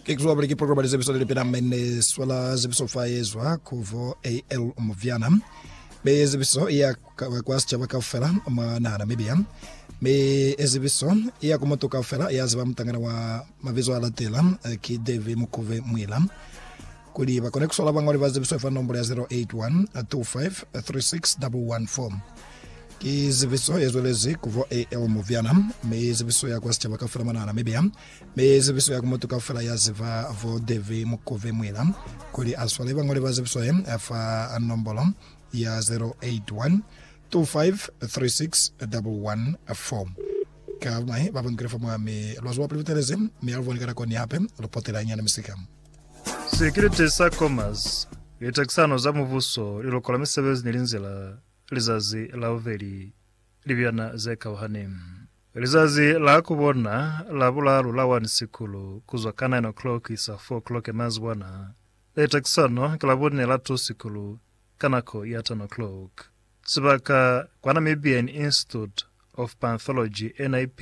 Ke kuzwa bali ki programa li zebiso lili pela mene swala zebiso fa yezwa kuvo AL Muvyana. Me ezebiso iya kwa sichaba kaufela mwa naha Namibia. Me ezebiso iya ku mutu kaufela ya ziba mutangana wa mabizo a latela ki Davy Mukuve Mwila. Kuli ba kone ku sola bañwali ba zibiso fa nombulo ya 0812536114. Ki zibiso ye zwelezi ku bo AL Muvyana, mi zibiso ya kwa sicaba kaufela mona Namibia, mi zibiso ya ku mutu kaufela ya ziba bo Davy Mukove Mwila, kuli a swale bañwali ba zibiso ye fa nombulo ya 0812536114. Ka ba mai ba bangile fa mwa mi lwa zuba pili butelezi, mi a lu boni ka nako ni hape lu potela hañani misika. Sekirite sa Comas, litakisano za mubuso, liloko la misebezi ni linzila, lizazi la bubeli, libyana ze kauhani. Lizazi la ku bona la bulaalu la 1 Sikulu, ku zwa ka 9 o'clock ku isa 4 o'clock ya mazibwana. Litakisano ki la bune la 2 Sikulu, ka nako ya 10 o'clock. Sibaka, kwa Namibian Institute of Panthology, NIP,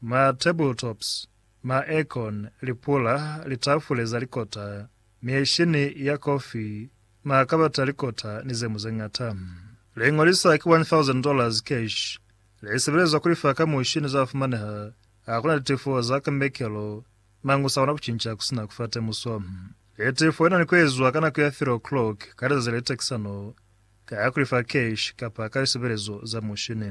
Ma tabletops, ma aircon, lipula, litafule za likota, mieshini ya kofi, makabati a likota ni ze mu ze ñata. Liño li sa ki $1,000 cash li sebelezwa ku lifa ka mushini za fumaneha ha ku na litefo za kambekelo mañi u sa kona ku cinca ku si na ku fa temuso. Litefo li na ni ku ezwa ka nako ya 3 o'clock ka lizazi le takisano ka ku lifa cash kapa ka lisebelezo za mushini.